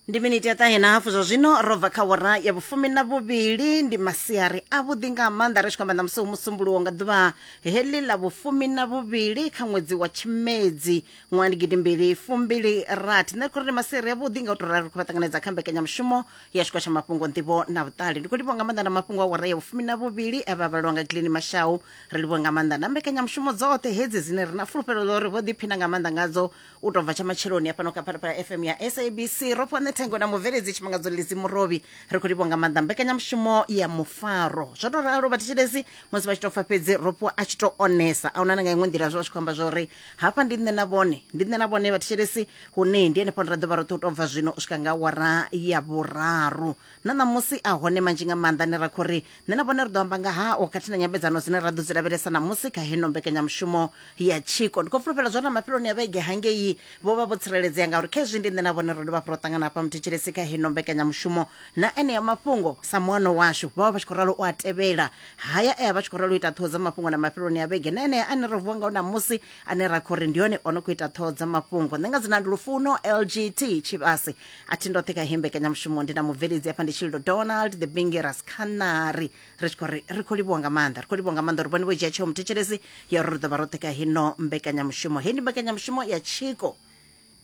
ndi miniti ya ṱahe na hafu zwa zwino ro bva kha wora ya vhufumi na vhuvhili ndi masiari a vhuḓi nga maanḓa ri tshi khou amba ṋamusi musumbuluwo nga ḓuvha heḽi ḽa vhufumi na vhuvhili kha ṅwedzi wa tshimedzi ṅwaha ndi gidi mbili fumbili rathi nṋe ri khou ri ndi masiari a vhuḓi nga u tou rali ri khou vha ṱanganedza kha mbekanyamushumo ya tshiko tsha mafhungo nḓivho na vhuṱali ndi khou livhuwa nga maanḓa na mafhungo a wora ya vhufumi na vhuvhili a vha vhalwa nga gilini mashau ri livhuwa nga maanḓa na mbekanyamushumo dzoṱhe hedzi dzine ri na fulufhelo ḽo ri vho ḓiphina nga maanḓa ngadzo u tou bva tsha matsheloni hafhano kha phalaphala fm ya sabc ro fhane thengo na mubveledzi tshimangadzo lidzi murovhi ri khou livhonga maanḓa mbekanyamushumo ya mufaro zwo tou ralo vhathetshelesi musi vha tshi tou pfa fhedzi ro fhiwa a tshi tou onesa a huna na nga iṅwe nḓila zwo vha tshi khou amba zwa uri hafha ndi nṋe na vhone ndi nṋe na vhone vhathetshelesi hune ndi henefho ra ḓo vha roṱhe u tou bva zwino u swika nga awara ya vhuraru Na ṋamusi a hone manzhi nga maanḓa ane ra khou ri nṋe na vhone ri ḓo amba nga hao khathihi na nyambedzano dzine ra ḓo dzi lavhelesa ṋamusi kha heno mbekanyamushumo ya tshiko. Ndi khou fulufhela zwa uri na mafheloni a vhege hangei vho vha vho tsireledzea ngauri khezwi ndi nṋe na vhone ro dovha hafhu ro ṱangana hafha muthetshelesi kha heno mbekanyamushumo na enea mafhungo sa muano washu. Vho vha vha tshi khou ralo u a tevhela haya e a vha tshi khou ralo u ita ṱhoho dza mafhungo na mafheloni a vhege na enea ane ro vuwa ngao ṋamusi ane ra khou ri ndi hone o no khou ita ṱhoho dza mafhungo. Nṋe nga dzina ndi Lufuno LGT Tshivhase a thi ndoṱhe kha heyi mbekanyamushumo ndi na mubveledzi hafha ndi tshililo donald the bingi rascanary ri tshi khou ri ri khou livhuwa nga maanḓa ri khou livhuwa nga maanḓa uri vhone vho dzhia tsheo muthetshelesi ya uri ri ḓo vha roṱhe kha hino mbekanyamushumo heyi ndi mbekanyamushumo ya tshiko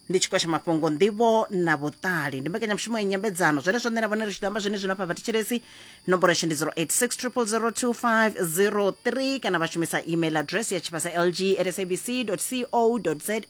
ndi tshiko tsha mafhungo nḓivho na vhuṱali ndi mbekanyamushumo ya nyambedzano zwenezwo nṋe na vhone ri tshi ḓo amba zwenezwino hafha vhathetshelesi nomboro yashu ndi 0860002503 kana vha shumisa email address ya tshivhasa lg at sabc co za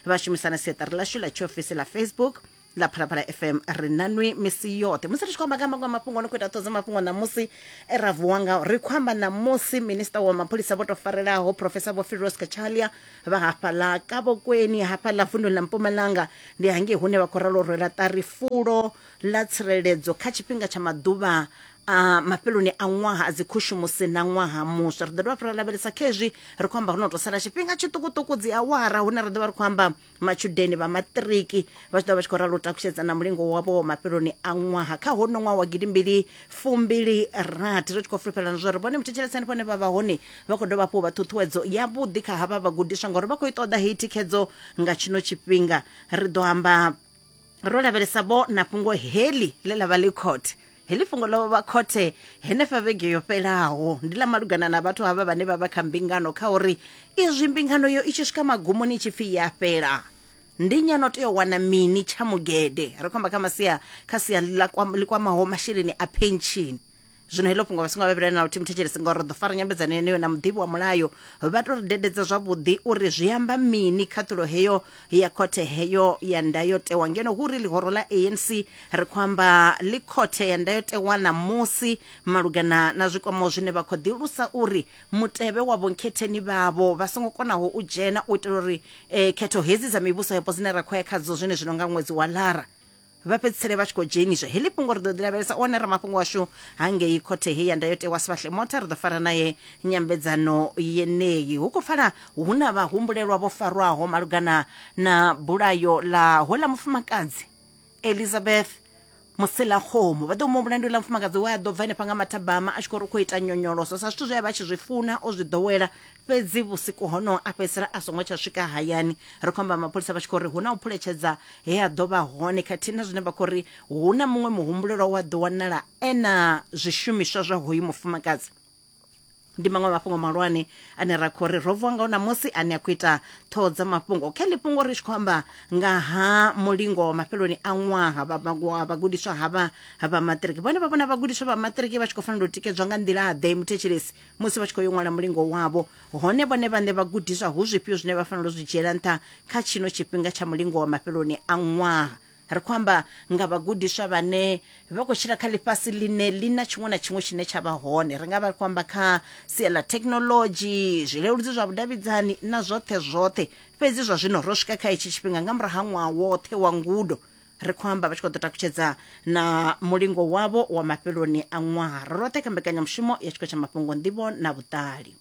vha shumisa na siaṱari lashu ḽa tshiofisi ḽa facebook ḽa phalaphala fm ri nanwi misi yoṱhe musi ri tshi khou amba nga maṅwe a mafhungo no khou ita ṱhodzo mafhungo ṋamusi e ra vuwa ngao ri khou amba ṋamusi minista wa mapholisa vho tou farelaho profesa vho firos kachalia vha hafhaḽa kavhokweni hafhaḽa vunḓu ḽa mpumalanga ndi hangei hune vha khou ralo rwela ṱari fulo ḽa tsireledzo kha tshifhinga tsha maḓuvha a mafheloni a ṅwaha a dzikhushumusi na ṅwaha muswa ri ḓo dovha fhira lavhelesa khezwi ri khou amba ho no tou sala tshifhinga tshiṱukuṱuku dzi awara hune ra ḓo vha ri khou amba matshudeni vha maṱiriki vha tshi ḓo vha tshi khou ralo u takutshedza na mulingo wavho wa mafheloni a ṅwaha kha hono ṅwaha wa gidimbili fumbili rathi ri tshi khou fulufhelana zwo ri vhone muthetsheleso henefho hone vha vha hone vha khou dovha hafhu vha ṱhuṱhuwedzo yavhuḓi kha havha vhagudiswa ngauri vha khou i ṱoḓa heyi thikhedzo nga tshino tshifhinga ri ḓo amba ro lavhelesa vho na fhungo heḽi ḽe ḽa vha ḽi khothe heḽi fhungo ḽo vha khothe henefha vhege yo fhelaho ndi ḽa malugana na vhathu havha vhane vha vha kha mbingano kha uri izwi mbingano yo i tshi swika magumoni i tshi pfhi ya fhela ndi nyano tea u wana mini tsha mugede ri khomba kha masia kha sia ḽi kwamaho masheleni a penshini zwino heḽo fhungo vha songo vhavhilela na luthihi muthetshelesi ngori ri ḓo fara nyambedzano yeneyo na muḓivhi wa mulayo vha to ri dededza zwavhuḓi uri zwi amba mini khaṱhulo heyo ya khothe heyo ya ndayotewa ngeno hu ri ḽihoro ḽa anc ri khou amba ḽi khothe ya ndayotewa ṋamusi malugana na zwikwamo zwine vha khou ḓilusa uri mutevhe wa vhonkhetheni vhavho vha songo konaho u dzhena u itela uri eh, khetho hedzi dza mivhuso yapo dzine ra khou ya khadzo zwine zwino nga ṅwedzi wa lara vha fhedzisele vha tshi khou dzheniswa heḽi fhungo ri ḓo ḓi lavhelesa one ramafhungo washu hangei khothe hei ya ndayotewa sifhahle mota ri ḓo fara naye nyambedzano yeneyi hu khou pfala hu na vhahumbulelwa vho farwaho malugana na bulayo ḽa hola mufumakadzi elizabeth muselakgomo vha ḓo mu mulandu ḽa mufumakadzi we a ḓo bva henefha nga mathabama a tshi khou ri u khou ita nyonyoloso sa zwithu zwe a vha tshi zwi funa o zwi ḓowela fhedzi vhusiku honoho a fhedzisela a songo tsha swika hayani ri khou amba mapholisa vha tshi khou ri hu na u phuletshedza he a ḓo vha hone khathihi na zwine vha khou ri hu na muṅwe muhumbulelwa wa ḓo wanala e na zwishumiswa zwa hoyu mufumakadzi ndi maṅwe a mafhungo mahulwane ane ra khou ri ro vuwa ngao ṋamusi ane a khou ita ṱhoho dza mafhungo kha ḽi fhungo ri tshi khou amba nga ha mulingo wa mafheloni a ṅwaha vha- vha- wa vhagudiswa havha vha maṱiriki vhone vha vhona vhagudiswa vha maṱiriki vha tshi khou fanela u tikedzwa nga nḓila-ḓe muthetshelesi musi vha tshi khou yo ṅwala mulingo wavho hone vhone vhaṋe vhagudiswa hu zwifhio zwine vha fanela u zwi dzhiela nṱha kha tshino tshifhinga tsha mulingo wa mafheloni a ṅwaha ri khou amba nga vhagudiswa vhane vha khou tshila kha ḽifhasi ḽine ḽi na tshiṅwe na tshiṅwe tshine tsha vha hone ri nga vha ri khou amba kha sia ḽa thekhinolodzhi zwileludzi zwa vhudavhidzani na zwoṱhe zwoṱhe fhedzi zwa zwino ro swika kha hetshi tshifhinga nga murahu ha ṅwaha woṱhe wa ngudo ri khou amba vha tshi khou ḓo takutshedza na mulingo wavho wa mafheloni a ṅwaha ro roṱhe kha mbekanyamushumo ya tshiko tsha mafhungo nḓivho na vhuṱali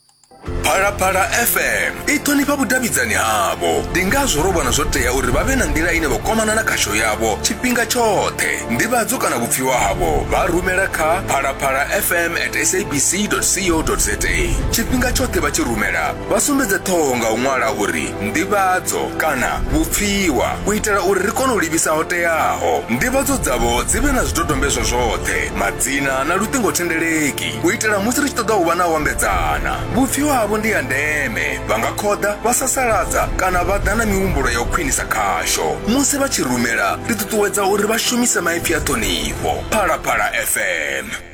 phalaphala fm i ṱhonifha vhudavhidzani havho ndi ngazwo ro vhona zwo tea uri vha vhe na nḓila ine vha kwamana na khasho yavho tshifhinga tshoṱhe nḓivhadzo kana vhupfiwa havho vha rumela kha phalaphala fm at sabc co za tshifhinga tshoṱhe vha tshi rumela vha sumbedze ṱhoho nga u ṅwala uri nḓivhadzo kana vhupfiwa u itela uri ri kone u livhisa ho teaho nḓivhadzo dzavho dzi vhe na zwidodombedzwa zwoṱhe madzina na luṱingothendeleki u itela musi ri tshi ṱoḓa u vha na u ambedzana vhupfiwa havho ndi ya ndeme vha nga khoḓa vha sasaladza kana vha ḓa na mihumbulo ya u khwinisa khasho musi vha tshi rumela ri ṱuṱuwedza uri vha shumise maipfi a ṱhonifho phalaphala fm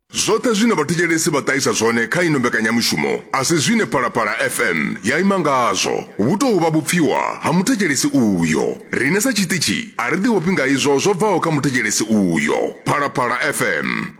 Zwoṱhe zwine vhathetshelesi vha ṱahisa zwone kha ino mbekanyamushumo a si zwine Phalaphala FM ya ima ngazwo. Hu tou vha vhupfiwa ha muthetshelesi uyo. Riṋe sa tshiṱitshi a ri ḓivhofhi nga izwo zwo bvaho kha muthetshelesi uyo. Phalaphala FM.